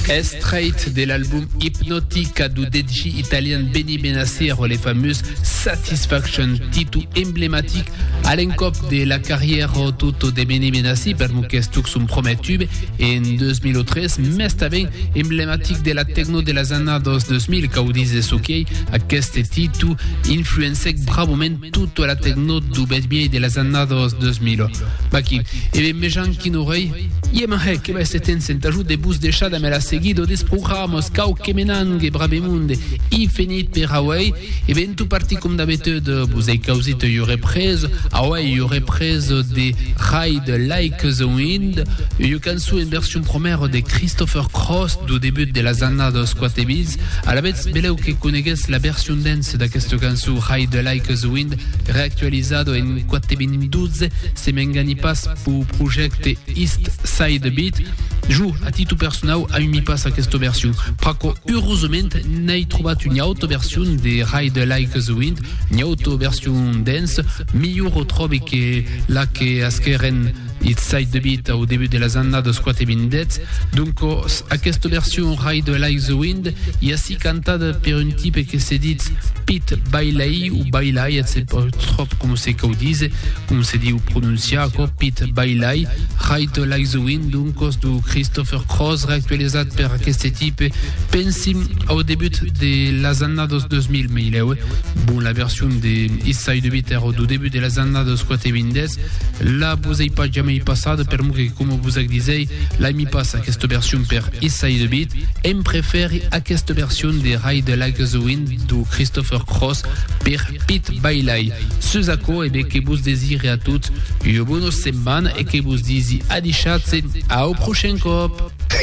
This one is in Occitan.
Estraight de l'album Hypnotica du DJ italian Benny Benasero, le fameux Satisfaction, titu emblematic a l'encòp de la carrièra tutto de Benny Benassi per mon questuc son promè tube en 2003, mes tanben emblematic de la tecno de las annadas 2000, cau dise soquei, aqueste titu influencèc bravament Tota la tecnot do bèth-viei de las annadas 2000. Vaquí. E ben mejan quin orei. Ie m'en hec, e se tens entajut de vos deishar damb la seguida des programas, cau que me n'angue bravemonde. I fenit per auei. E ben tu parti com d'abetud. Vos ei causit ua represa. Auei ua represa de Ride Like the Wind, ua cançon en version promèra de Christopher Cross do debut de las annadas 4000. Alavetz, beleu que coneguetz la version dens. Se d'aquesta cançon Hide the Like a the Wind reactualizada en 4.12 se m'engani pas pau projècte East Side Beat, jo, a titu personau, aimi pas aquesta version, pr'aquò urosament n'ai trobat una auta version de Hide the Like a the Wind, una auta version dance, milhor o tròbe que la que asquèren It sait debit au debut de las annadas quate vindètz, doncos aquesta version Ride the Like the Wind i ací cantada per un tipe que se ditz Pit Bailey o Bailay, et se pas tròp com se cau dise, com se diu prononciar aquò, Pit Bailay, Ride the Like the Wind, doncos do Christopher Cross reactualizat per aqueste tipe, pensim au debut de las annadas 2000, me hilèu, eh? Bon, la version de It sait debit èra do debut de las annadas quate vindètz, Là vos ei pas jamei passada per mo que coma vos ac disei lai mi passa aquesta version per Issai de Bit em preferi aquesta version de Rai de la Gasoin do Christopher Cross per Pit Bailai sus aquò e bé que vos desire a tots ua bona setmana e que vos disi adichatse au prochain cop